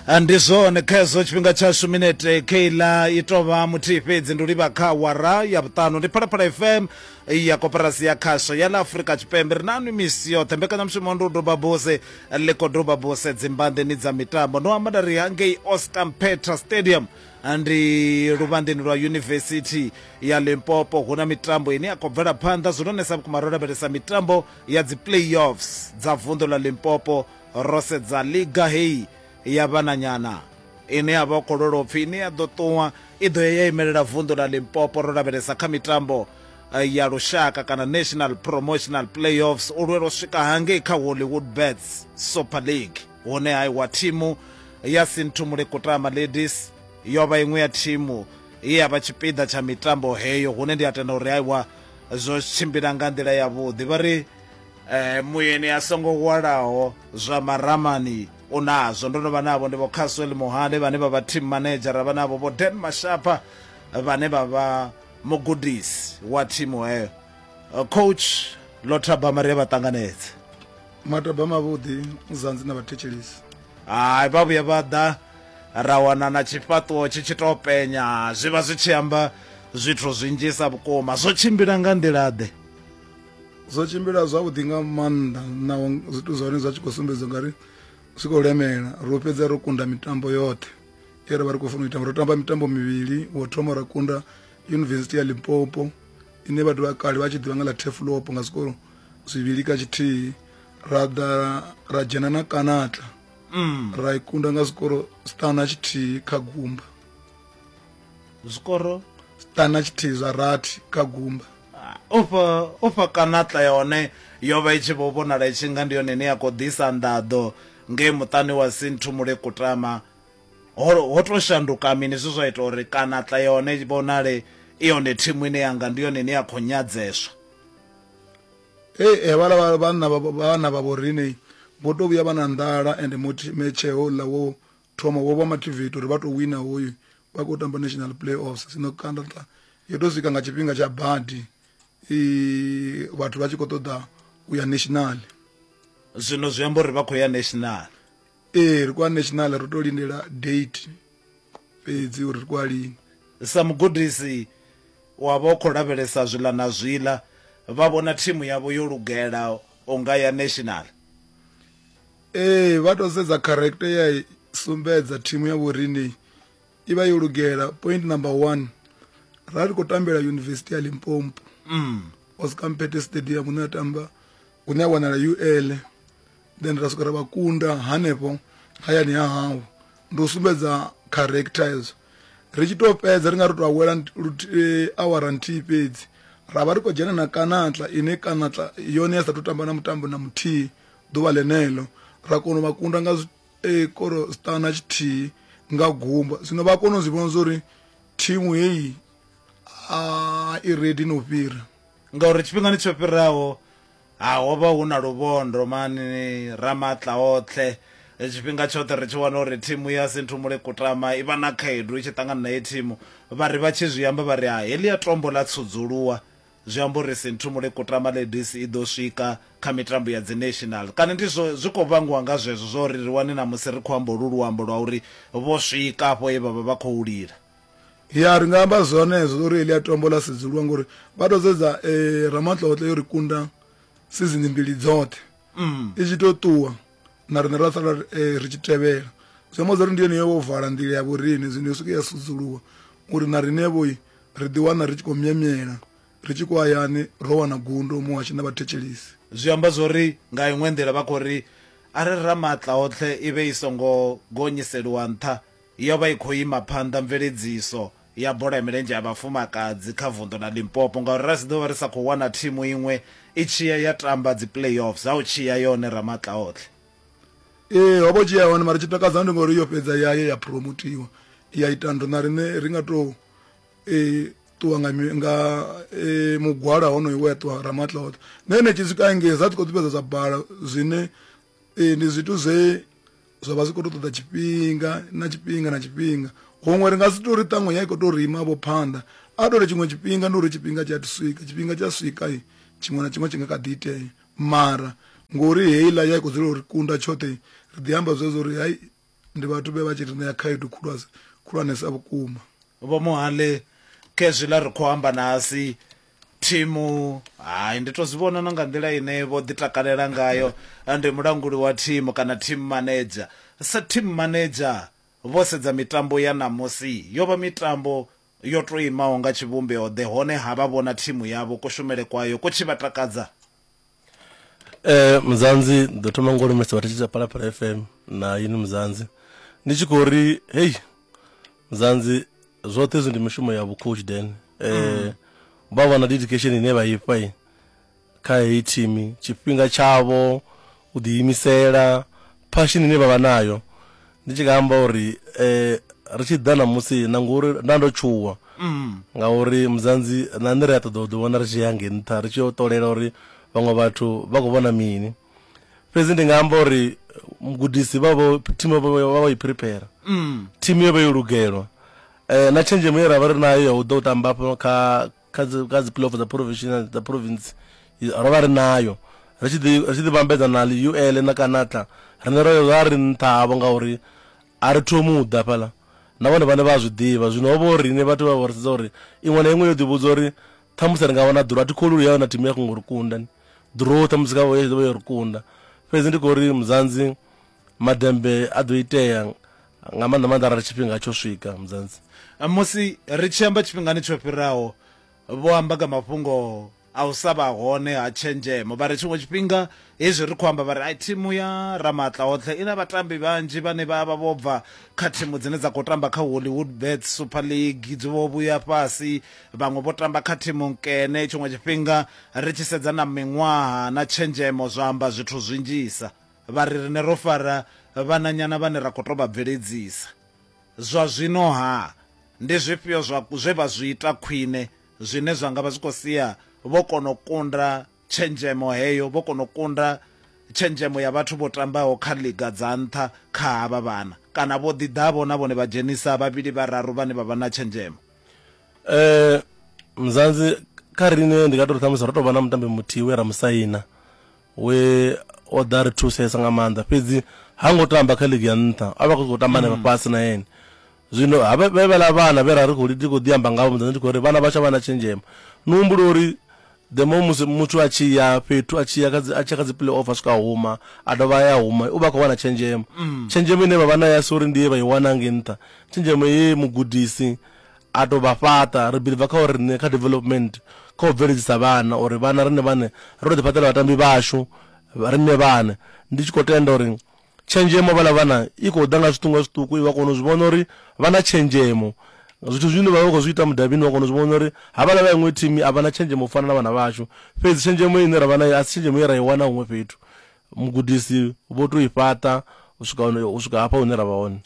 Ah, ndi zwone kha hezwo tshifhinga tshashu minete keila i tou vha muthihi fhedzi ndi u livha kha awara ya vhuṱanu ndi phalaphala fm ya koporasi ya khasho ya ḽa afurika tshipembe ri nanu misi yoṱhe mbekanyamushumo ndi u doba buse ḽi khou doba buse dzimbanḓeni dza mitambo no amba nda ri hangei oscar mpetra stadium Ah, ndi luvhandeni lwa yunivesithi ya limpopo hu na mitambo ine ya khou bvela phanḓa zwi lonesa vhukuma ro lavhelesa mitambo ya dzi playoffs dza vunḓu ḽa Limpopo ro sedza liga heyi ya vhananyana ine ya vha khololopfi ine ya ḓo ṱuwa i ḓo ya ya imelela vunḓu ḽa Limpopo ro lavhelesa kha mitambo eh, ya lushaka kana national promotional playoffs u lwela u swika hangei kha hollywood bets super league hune ha iwa thimu ya sinthumule kutama ladies yo vha iṅwe ya thimu ye ya vha tshipiḓa tsha mitambo heyo hune ndi a tenda uri aiwa zwo tshimbila nga nḓila yavhuḓi vha ri eh, muyeni a songo hwalaho zwa maramani u nazwo ndo no vha navho ndi vho caswell muhande vhane vha vha team manager ra vha navho vho dan mashapha vhane vha vha mugudisi wa thimu heyo coach lothaba maria vha ṱanganedze mataba mavhuḓi muzanzi na vhathetshelisi hai vha vhuya vha ḓa ra wana na tshifhaṱuwo tshi tshi tou penya zwi vha zwi tshi amba zwithu zwinzhisa vhukuma zwo tshimbila nga nḓila-ḓe zwo tshimbila zwavhuḓi nga maanḓa naho zwithu zwa hone zwa tshi khou sumbedza ngari zwi khou lemela ro fhedza ro kunda mitambo yoṱhe e ra vha ri khou funa u itamba ro tamba mitambo mivhili wo thoma ra kunda yunivesithi ya limpopo ine vhathu vha kale vha tshi ḓivha nga ḽa tefulopo nga zwikolo zwivhili ka tshithihi ra ḓa ra dzhena na kanata mm. ra i kunda nga zwikoro sitana tshithihi kha gumba zwikoro sitana tshithihi zwa rathi kha gumba ah, ofha ofha kanata yone yo vha i tshi vho vhonala i tshi nga ndi yone ine ya khou ḓisa nḓaḓo ngei muṱani wa sinthu mulekutama ho to shanduka mini zwi zwa ita uri kana tla yone vhonale i yone thimu ine yanga ndi yone ine ya khou nyadzeswa Hey, havhala vha- vhanna vha- vha- vhana vha vhorine vho to vhuya vha na nḓala and moti- metshe houḽa wo thoma wo vha mativate uri vha to wina hoyu vha khou tamba national play offs sino kandata yo to swika nga tshifhinga tsha badi i vhathu vha tshi khou ṱoḓa u ya national zwino zwi amba uri vha khou ya national ee ri kwa national ri to lindela date fhedzi uri ri kwa lini sa mugudisi wa vha u khou lavhelesa zwiḽa na zwiḽa vha vhona thimu yavho yo lugela unga ya national ee vha to sedza character ya sumbedza thimu ya vhorine i vha yo lugela point number one ra ri khou tambela yunivesithi ya limpompo mm. oscar mpete stadium une a tamba une a wanala ul then ra swika ra vha kunda hanefho hayani ha hawu ndi u sumbedza character hezwo ri tshi tou fhedza ri nga ri tou awela eh, awara nthihi fhedzi ra vha ri khou dzhena na kanatla ine kanatla yone ya sa tou tamba na mutambo na muthihi ḓuvha ḽeneḽo ra kona u vha kunda nga e koro star na tshithihi nga gumba zwino vha kona u zwi vhona zwori thimu heyi a i ready no fhira ngauri tshifhingani tsho fhiraho ha ho vha hu na luvhondo mani ramatla oṱhe tshifhinga tshoṱhe ri tshi wana uri thimu ya sinthumule kutama i vha na khaedu i tshi ṱangana na ye thimu vha ri vha tshi zwi amba vha ri ha heḽia tombo ḽa tsudzuluwa Zwi amba uri Sinthumule Kutama Ladies i ḓo swika kha mitambo ya dzi National kana ndi zwo zwi khou vhangiwa nga zwezwo zwa uri ri wane ṋamusi ri khou amba holu luambo lwa uri vho swika afho he vha vha vha khou lila. Ya, ri nga amba zwenezwo zwa uri heḽia tombo ḽa sedzuluwa ngori vha tou sedza Ramatlotlo yo ri kunda sizini mbili dzoṱhe i tshi tou ṱuwa. na riṋe ra sala eh, ri tshi tevhela zwi amba zwa ri ndi yone yo vala nḓila ya vhoriṋe zwino yo swike ya sudzuluwa uri na riṋevhoi ri ḓiwana ri tshi khou myemyela ri tshi khou hayani ro wana gundo muhashi na vhathetshelisi zwi amba zwori nga iṅwe nḓila vha khou ri a ri ramaatla oṱhe i vhe i songo gonyiseliwa nṱha yo vha i khou ima phanḓa mveledziso ya bola ya milenzhe ya vhafumakadzi kha vunḓu ḽa Limpopo ngauri ra si ḓo vha ri sa khou wana thimu iṅwe i tshiya ya tamba dzi playoffs ha u tshiya yone ramatla otlhe ee ho vho tshiya hone mara tshi takadza ndi ngori yo fhedza ya ye ya promotiwa ya ita ndo na riṋe ri nga tou um ṱuwa nga nga um mugwala honoyo we a ṱuwa ramatla oṱhe na ene tshi swika engei za tshi khou ḓifhedza zwa bala zwine ee ndi zwithu zwe zwa vha zwi khou to ṱoḓa tshifhinga na tshifhinga na tshifhinga huṅwe ri nga si tori ṱaṅwe ya i khou to rima vho phanḓa a tore tshiṅwe tshifhinga ndi uri tshifhinga tshi a swika tshifhinga tshi a swika tshiṅwe na tshiṅwe tshi nga kha ḓi itea mara ngori heiḽa ya i khou dzula uri kunda tshoṱhe ri ḓi amba zwezwo uri hai ndi vhathu vhe vha tshi ri ṋea khaedu khulwane khulwanesa vhukuma vho muhali khezwi ḽa ri khou amba na asi thimu hai ndi to zwi vhona na nga nḓila ine vho ḓi takalela ngayo ndi mulanguli wa thimu kana team manager sa team manager vho sedza mitambo ya ṋamusi yo vha mitambo yo to imaho nga tshivhumbeo ḓe hone ha vha vhona thimu yavho kushumele kwayo ku tshi vha takadza eh muzanzi ndo thoma ngo lumesa vha thetshelesa phalaphala fm na yini muzanzi ndi tshi khou ri hei muzanzi zwoṱhe hezwi ndi mishumo ya vhukhoshi den eh vha vha na dedication ine vha ifha i kha heyi thimu tshifhinga tshavho u ḓiimisela, phashini ine vha vha nayo. Ndi tshi nga amba uri ri tshi ḓa ṋamusi na ngori nda ndo tshuwa ngauri Mudzanzi na nṋe ri a ṱoḓa u ḓiwana ri tshi ya hangei nṱha ri tshi yo ṱolela uri vhaṅwe vhathu vha khou vhona mini. Fhedzi ndi nga amba uri mugudisi vha vho, thimu vha vha vho i phiriphera, thimu yo vha yo lugelwa na tshenzhemo ye ra vha ri nayo ya u ḓa u tamba hafha kha kha dzi kha dzi playoff dza provincial dza province ro vha ri nayo ri tshi ḓi ri tshi ḓi vhambedza na li UL na Kanatla rine ro vha ri nṱha havho ngauri a ri thomi u ḓa fhala na vhone vhane vha zwi ḓivha zwino ho vha uri rine vhathu vha vha ri sedza uri iṅwe na iṅwe yo ḓivhudza uri ṱhamusi ri nga wana ḓuro a thi kholulu yayo na thimu ya khongo ri kunda ni ḓuro ṱhamusi kha vho yo ḓo vha yo ri kunda fhedzi ndi khou ri muzanzi Maḓembe a ḓo itea nga maanḓa maanḓa arali tshifhinga tsho swika mudzanzi. Musi ri tshi amba tshifhingani tsho fhiraho, vho amba nga mafhungo a u sa vha hone ha tshenzhemo. Vha ri tshiṅwe tshifhinga hezwi ri khou amba vha ri ai thimu ya Ramaatlaotlhe i na vhatambi vhanzhi vhane vha vha vho bva kha thimu dzine dza khou tamba kha Hollywood Bets Super League dzi vho vhuya fhasi vhaṅwe vho tamba kha thimu nkene tshiṅwe tshifhinga ri tshi sedza na miṅwaha na tshenzhemo zwa amba zwithu zwinzhisa vha ri riṋe ro fara vhananyana vhane ra khou tou vha bveledzisa. Zwa zwino-ha, ndi zwifhio zwa zwe vha zwi ita khwine zwine zwa nga vha zwi khou sia vho kona u kunda tshenzhemo heyo, vho kona u kunda tshenzhemo ya vhathu vho tambaho kha ḽiga dza nṱha kha havha vhana kana vho ḓi ḓa-vho na vhone vha dzhenisa vhavhili vhararu vhane vha vha na tshenzhemo? Muzansi, Kha riṋe ndi nga tou ri ṱhamusi ro tou vha na mutambi muthihi we ra mu saina we o ḓa ri thusesa nga maanḓa fhedzi ha ngo tamba kha ligi ya nṱha a vha khou khou tamba henefha mm. fhasi na ene zwino vhevhela vhana vhe ra ri khou ndi khou ḓi amba ngavho muḓana ndi khou ri vhana vha tsha vha na tshenzhemo ni humbula uri the mo musi muthu a tshi ya fhethu a tshi ya a tshi ya kha dzi play off a swika huma a dovha ya huma u vha khou wana tshenzhemo mm. tshenzhemo ine vha vha na ya si uri ndi ye vha i wana nge nṱha tshenzhemo ye mugudisi A tou vha fhaṱa. Ri billiva kha u riṋe kha development, kha u bveledzisa vhana, uri vhana riṋe vhaṋe ri tou ḓifhaṱela vhatambi vhashu riṋe vhaṋe. Ndi tshi khou tenda uri tshenzhemo ya vhaḽa vhana i khou ḓa nga zwiṱuku nga zwiṱuku, iwe u a kona u zwi vhona uri vha na tshenzhemo. Zwithu zwine vha vha vha khou zwi ita mudavhini u a kona u zwi vhona uri havhaḽa vha iṅwe thimu a vha na tshenzhemo u fana na vhana vhashu. Fhedzi tshenzhemo ine ra vha nayo a si tshenzhemo ye ra i wana huṅwe fhethu. mugudisi vho to i fhaṱa u swika u swika hafha hune ra vha hone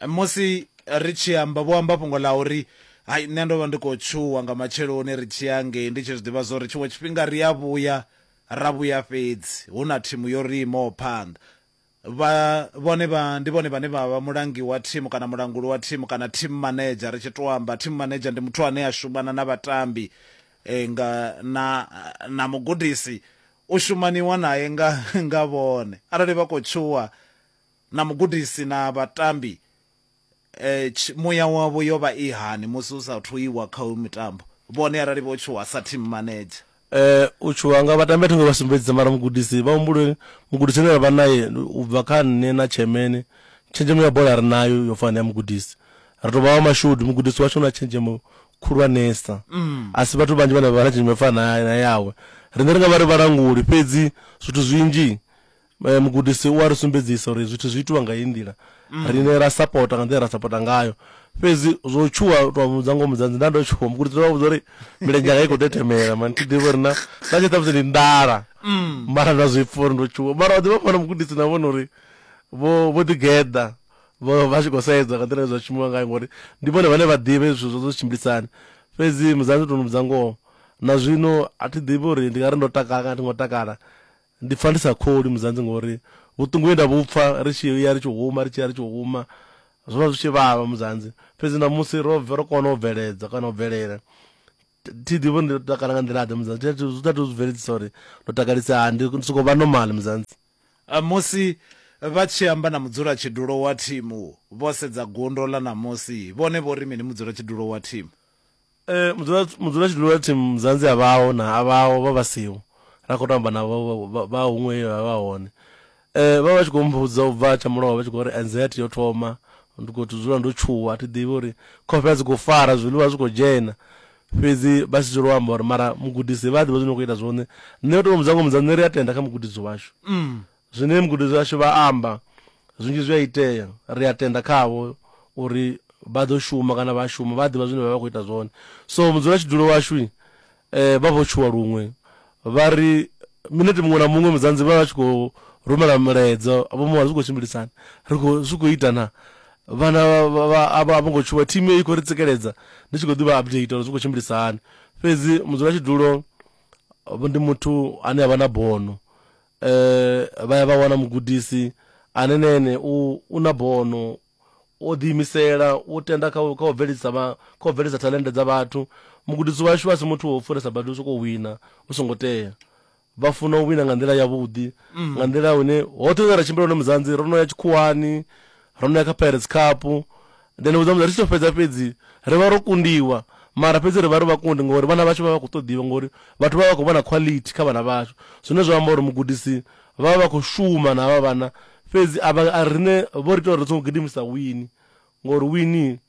musi ri tshi amba vho amba fhungo ḽa uri hai nṋe ndo vha ndi khou tshuwa nga matsheloni ri tshi ya ngei ndi tshi zwi ḓivha zwa uri tshiṅwe tshifhinga ri a vhuya ra vhuya fhedzi hu na thimu yo ri imaho phanḓa vha vhone vha ndi vhone vhane vha vha mulangi wa thimu kana mulanguli wa thimu kana team manager ri tshi to amba team manager ndi muthu ane a shumana na vhatambi eh, nga na na mugudisi u shumaniwa nae nga nga vhone arali vha khou tshuwa na mugudisi na vhatambi tshi muya wavho yo vha i hani musi hu sa thu iwa kha hoyu mutambo vhone arali vho tshuwa sa team manager. U tshuwa nga vhatambi a thi ngo vha sumbedzisa mara mugudisi vha humbule mugudisi ane ra vha nae u bva kha nṋe na Tshemene tshenzhemo ya bola ri nayo yo fana na ya mugudisi ri tou vha vha mashudu mugudisi washu na tshenzhemo khulwanesa. A si vhathu vhanzhi vhane vha vha na tshenzhemo yo fana na na yawe. Riṋe ri nga vha ri vhalanguli, fhedzi zwithu zwinzhi mugudisi u a ri sumbedzisa uri zwithu zwi itiwa nga heyi nḓila, riṋe ra sapota nga nḓila ye ra sapota ngayo. Fhedzi zwo tshuwa, u tou mu vhudza ngoho Mudzanzi, nda ndo tshuwa. Mugudisi o vha vhudza uri milenzhe yanga i khou tetemela, mara ni tshi ḓivha uri na, na tshi ṱhamusi ndi nḓala, mara nda zwi pfa uri ndo tshuwa. Mara vha ḓivha fhano mugudisi na vhone uri vho, vho ḓi geḓa, Vho vha tshi khou sedza nga nḓila ine zwa shumiwa ngayo ngori ndi vhone vhane vha ḓivha zwithu zwo zwo tshimbilisa hani. Fhedzi musidzana ndi tou mu vhudza ngoho, na zwino a thi ḓivhi uri ndi nga ri ndo takala kana a thi ngo takala. Ndi pfa ndi sa kholwi mudzanzi ngori vhuṱungu he nda vhu pfa ri tshi ya ri tshi huma, ri tshi ya ri tshi huma, zwo vha zwi tshi vhavha mudzanzi. Fhedzi ṋamusi ro ro kona u bveledza kana u bvelela. thi ḓivhi uri ndi ḓo takala nga nḓila ḓe muzanzi Thi- thi- zwi ṱathi u zwi bveledzisa uri ndo takalisa hani ndi ndi sokou vha normal muzanzi Ah, Musi vha tshi amba na mudzulatshidulo wa thimu vho sedza gundo ḽa ṋamusi, vhone vho ri mini mudzulatshidulo wa thimu? Eh, mudzula mudzula tshidulo wa thimu muzanzi a vhaho na a vhaho vha vha siho ra khou tamba na vha- vha- vha- vha huṅwe he vha vha hone Vha vha vha tshi khou mmbudza u bva tsha mulovha vha tshi khou ri anxiety yo thoma, ndi khou to dzula ndo tshuwa a thi ḓivhi uri khofhe a dzi khou fara zwiḽiwa a zwi khou dzhena. Fhedzi vha si dzule u amba uri mara mugudisi vha a ḓivha zwine na khou ita zwone, nṋe u to mmbudza ngoho mmbudza nṋe ri a tenda kha mugudisi washu. Zwine mugudisi washu vha amba zwinzhi zwi a itea ri a tenda khavho uri vha ḓo shuma kana vha a shuma vha a ḓivha zwine vha vha khou ita zwone so mudzulatshidulo washu Vha vho tshuwa luṅwe vha ri, Minete muṅwe na muṅwe Mudzanzi vha vha vha tshi khou rumela mulaedza vho mu vha zwi khou tshimbilisana, ri khou, zwi khou ita na? Vhana vha, a vho ngo tshuwa, thimu heyi i khou ri tsikeledza, ndi tshi khou ḓi vha updater uri zwi khou tshimbilisa hani. Fhedzi mudzulatshidulo ndi muthu ane a vha na bono, vha ya vha wana mugudisi ane na ene u, u na bono. o ḓiimisela, u tenda kha u bveledzisa kha u bveledza thalennde dza vhathu. Mugudisi washu a si muthu wa u fhiresa badi u sokou wina hu songo tea. Vha funa u wina nga nḓila yavhuḓi, nga nḓila hune hoṱhe hune ra tshimbila hone Mudzanzi, ro no ya tshikhuwani, ro no ya kha Pirates Cup, ndi a ni vhudza Mudzanzi, ri tshi tou fhedza fhedzi ri vha ro kundiwa mara fhedzi ri vha ri vhakundi ngori vhana vhashu vha vha vha khou ṱoḓiwa ngori vhathu vha vha vha khou vhona quality kha vhana vhashu zwine zwa amba uri mugudisi Vha vha vha khou shuma na havha vhana fhedzi a vha a riṋe vho ri ita uri ri songo gidimisa wini ngori wini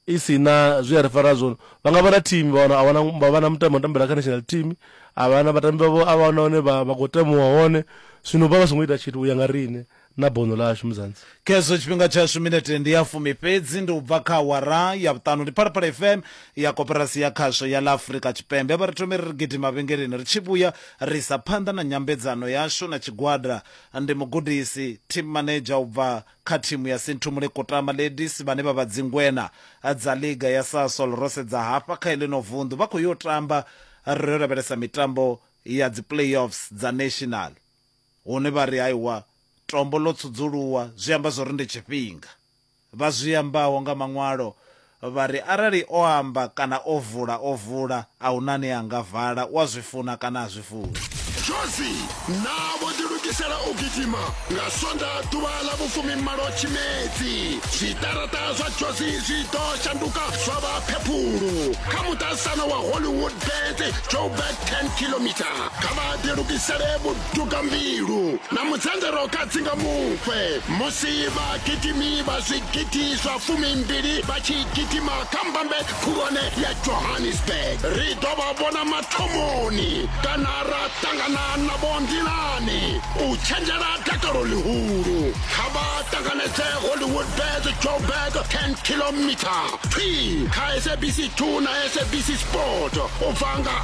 i si na zwi a ri fara zwone. Vha nga vha na thimu vha wana a wana vha vha na mutambi wa u tambela kha national team a vha na vhatambi vhavho a vha wana hone vha vha khou temuwa hone zwino vha vha songo ita tshithu u ya nga riṋe na bono ḽashu Mudzansi. khezwo tshifhinga tshashu minete ndi ya fumi fhedzi ndi u bva kha awara ya vhuṱanu ndi phalaphala fm ya koperasi ya khasho ya ḽa afurika tshipembe vha ri thome ri ri gidi mavhengeleni ri tshi vhuya ri sa phanḓa na nyambedzano yashu na tshigwada ndi mugudisi team manager u bva kha thimu ya sinthumule kutama ladies vhane vha vha dzingwena dza liga ya sasol ro sedza hafha kha eḽino vunḓu vha khou yo tamba ri yo lavhelesa mitambo ya dzi playoffs dza national Hone vha ri, Aiwa, tombo ḽo tsudzuluwa, zwi amba zwa uri ndi tshifhinga. Vha zwi ambaho nga Maṅwalo vha ri, Arali O amba kana O vula, O vula, a hu na ane a nga vala, u a zwi funa kana ha zwi funi. Jozi, Naa vho ḓilugisela u gidima nga Sonḓa ḓuvha ḽa vhufumimalo Tshimedzi? Zwiṱaraṱa zwa Jozi zwi ḓo shanduka zwa vha phephulu. Kha muṱaṱisano wa Hollywoodbets, Joburg 10 kilometre. kha vha ḓilugisele vhuduka mbilu na mudzanzaro kha dzinga mufhe musi vhagidimi vha zwigidi zwa fumimbili vha tshi gidima kha mbambe khulwane ya johannesburg ri ḓo vha vhona mathomoni kana ra ṱangana navho nḓilani u tshenzhela dakalo ḽihulu kha vha ṱanganedze hollywood bes joburg 10 kilomita thwi kha sabc 2 na sabc sport u bva nga